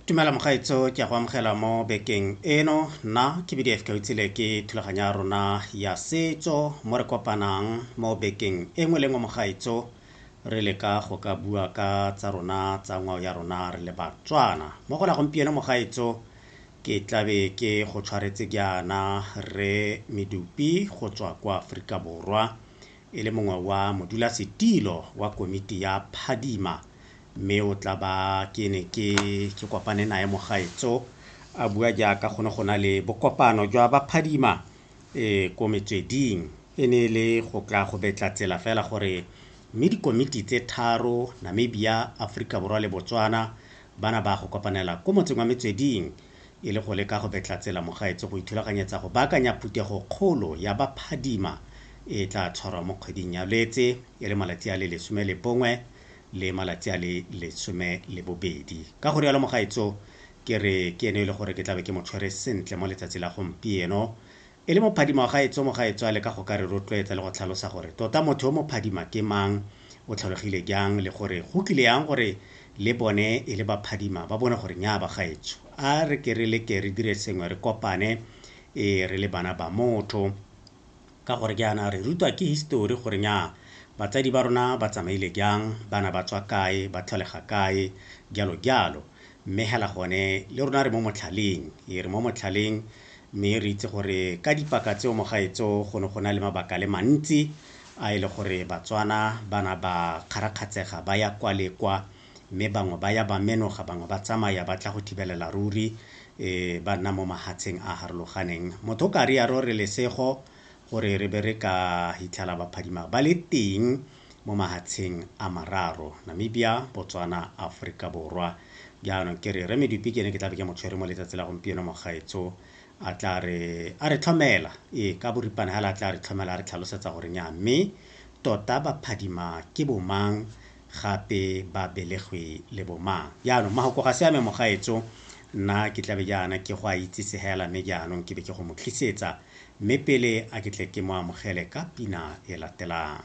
dumela mogaetso ke ya go amogela mo bekeng eno nna ke bdf kautsile ke thulaganyo ya rona ya setso mo re kopanang mo bekeng e nngwe le nngwe mogaetso re leka go ka bua ka tsa rona tsa ngwao ya rona re le batswana mo go la gompieno mogaetso Ke tlabe ke go tshwaretse jaana Rre Medupi go tswa kwa Aforika Borwa e le mongwe wa modulasetilo wa komiti ya Phadima mme o tla ba ke ne ke ke kopane nae mogaetso a bua jaaka go ne go na le bokopano jwa ba Phadima eh ko metsweding e ne e le go tla go betla tsela fela gore mme dikomiti tse tharo Namibia, Aforika Borwa le Botswana bana ba a go kopanela ko motseng wa Metsweding e le go leka go betla tsela mogaetsho go ithulaganyetsa go baakanya phuthego kgolo ya ba phadima e tla tshwarwa mo kgweding ya Lwetse e le malatsi a le lesome le bongwe le malatsi a le lesome le bobedi. Ka go rialo mogaetsho ke re ke eno e le gore ke tlabe ke mo tshwere sentle mo letsatsi la gompieno E le mophadima wa gaetsho mogaetshoale ka go ka re rotloetsa le go tlhalosa gore tota motho yo mophadima ke mang, o tlholegile jang le gore go kile yang gore le bone e le baphadima ba bone gore nnyaa bagaetsho a re ke re leke re dire sengwe re kopane e re le bana ba motho ka gore jaana re rutwa ke histori gore nnyaa batsadi ba rona ba tsamaile jang, bana ba tswa kae, ba tlholega kae, jalo jalo. Mme hela gone le rona re mo motlhaleng, e re mo motlhaleng, Mme re itse gore ka dipaka tseo mo gaetso go ne go na le mabaka le mantsi a e le gore Batswana ba na ba kgarakgatsega ba ya kwa le kwa, mme bangwe ba ya ba menoga, bangwe ba tsamaya ba tla go thibelela ruri e ba nna mo mahatsheng a harologaneng. Motho o ka riaro re lesego gore re be re ka hitlhela baphadima ba le teng. mo mahatsheng a mararo, Namibia, Botswana, Aforika Borwa. Jaanong ke re Rre Medupi ke ene ke tla be ke mo tshwere mo letsatsi la gompieno mogaetso a tla re a re tlhomela ee ka boripana hela a tla re tlhomela a re tlhalosetsa gore nya mme tota ba phadima ke bomang gape ba belegwe le bomang jaanong mahoko ga se ame mogaetso nna ke tlabe jaana ke go a itsise hela mme jaanong ke be ke go mo tlisetsa mme pele a ke tle ke mo amogele ka pina e latelang.